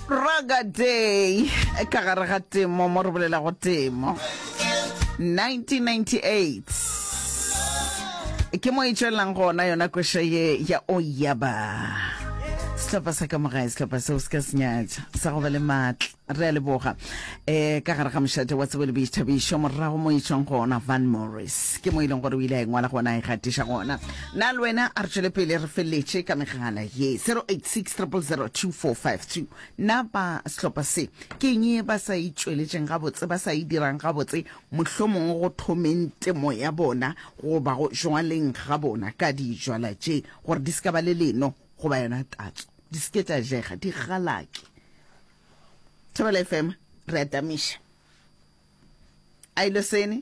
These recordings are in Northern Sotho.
raga day ka gare ga temo mo re bolelago temo 1998 ke mo e tswelelang gona yona koša ye ya oyaba setlhopha sa ka mogae setlhopha seo se ka senyatša sa go ba le maatla re a leboga um ka gare ga mošate wa tsebo le boithabišo morago mo e tswang gona van morris ke mo e leng gore o ile a engwala gona a e gatiša gona Na le wena a re tšwele pele re feleletše ka megala ye 086 000 2452 na ba sehlopha se ke eng e ba sa e tšweletšeng gabotse ba sa e dirang gabotse mohlomongwe go thomeng temo ya bona goba go jwaleng ga bona ka dijwala tše gore di se ka ba le leno goba yona tatso di se ke tša jega di galake thobela fm re atamiša a ile sene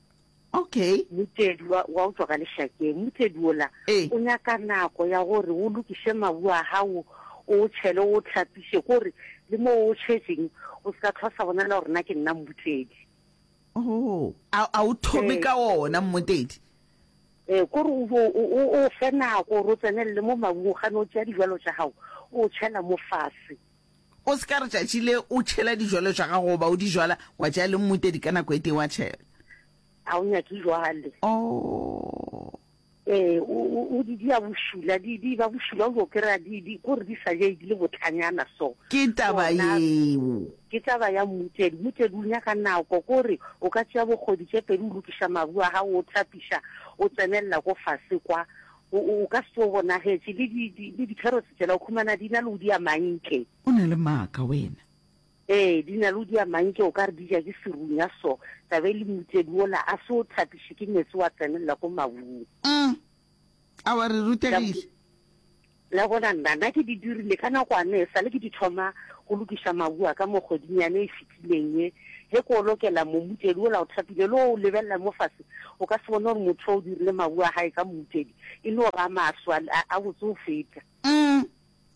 Okay. Mmutledi, wa, wa utlwa ka lešakeng, mmutledi ola Ee. o nyaka nako ya gore o lokiše mabu a gago, o o tšhele, o o hlapiše, kore le mo o tšhetšeng o se ka tlhwa sa bonala gore na ke nna mmutledi. Oh, a, a o thome Ee. ka ona mmutledi. Ee, kore o bo o, o, o fe nako gore o tsenelele mo mabung, o gane o tšea dijalo tša gago, o o tšhela mo fase. O se ka re tšatši le o tšhela dijwalo tša gago goba o di jwala, wa tšea le mmutedi ka nako e tee wa tšhela. Ga o nyake jwale. Oh. Ee, o di dia bošula, di di ba bošula o yo kry-a di di kore di sa jai di le botlhanyana so. Ke taba yeo. Ke taba ya mmutedi, mmutedi o nyaka nako kore o ka tšea bokgodi tše pedi o lokiša mabu a gago o thapiša o tsenelela ko fase kwa O, o, o ka se tsoge bonagetše, le di, di, le dikherotse tšela, o khumana di na le udi a mantše. O na le maaka wena. Ee, di na le udi a mantše, o ka re di ja ke serunya so. Taba e le mmutsedi wola a se o thapiše ke meetse wa tsenelela ko mabung. Umm. A wa re rutegile. La bona nna, nna ke di dirile ka nakwana e sale ke di thoma go lokiša mabu a ka mo kgweding yane e thapileng e. Ge ko lokela momutedi ola o thapile le o lebelela mo fase, o ka se bone gore motho o dirile mabu a gae ka momutedi e no ra maso a, a botse go feta. Mm,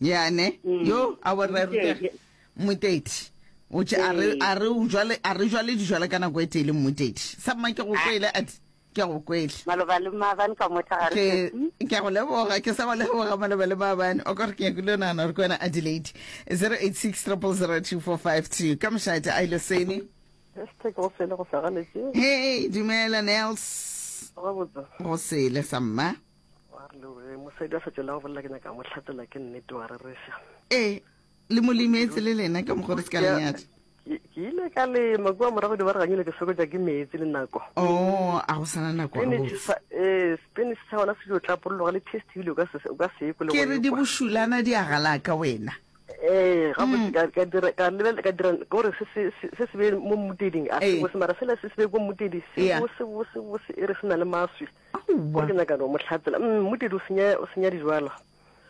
ya ne. Mm. Yo, a wa re rutege. Mmutedi. O tše a re, a re, o jwale, a re jwale dijwale ka nako e tee le mmutedi. Sa mma ke go kwele, a di. Ke a go kwele. Maloba le maabane ka motla ga re fetsi. Ke a go leboga, ke sa go leboga maloba le maabane. O ka gore ke nyakile o nagana gore ke wena Adelaide. 086 000 2452 ka mošate a ile sene. Hashtag go sele go sagaletše. Hey, dumela Nels. Gabotse. Go sele sa mma. Wa re le mosadi a sa tšwela go bolela ke nyaka mo hlatela ke nnete wa rereša. Ee. le mo limetse le lena ka mogore se ka lenyadi ke ile ka lema kua morago dibaraganyile ke sokotsa ke metsi le nako o oh, a go sana nako ee spanish sa gona se dio tlapolologa le test ebile o ka se ye kole ke re di bošulana di a galaka wena ee mm. ka dira gore se se be mo mmuteding a se bose mara sela se se be ko mmutedi se bose bose bose e re se na le maswi ke nyaka no motlhatsela mm, mmutedi o senya dijwala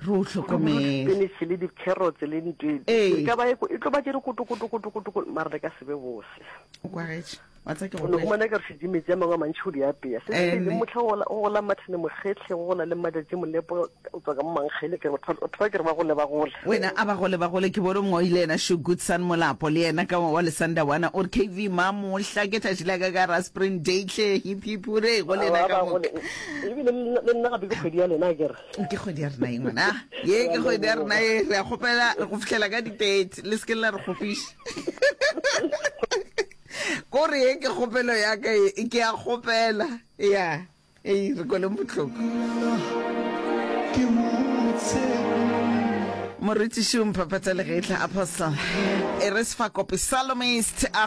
re o hlokomele spinach le di carrots le ntwe ee. ka ba e tlo ba jere koto koto koto koto koto mara le ka sebe bose o kwa getse wa tsa ke go go mona ka re di metse mangwe a mantšhe o di apeya se se le motho go go la mathane mogetlhe go gola le madatse molepo o tswa ka mangele ke re o thoba ke re ba gole ba gole wena a ba gole ba gole ke bone mongwe ile ena sho good son molapo le ena ka wa le sanda wana or kv ma mo hla ke tla jila ka ka ra spring day tle hip hip re go le ena ka mo e bile le nna ga be go kgedi ya lena ke re ke kgwedi ya rena ye ngwana ye ke kgwedi ya rena ye re a kgopela re go fitlhela ka di-tate le se ke la re kgofiša kore ye ke kgopelo ya ka ye ke a kgopela ya ei re kweleng botlhoko morutiši o mphaphatsa legetla apostle e re sefakope salomist a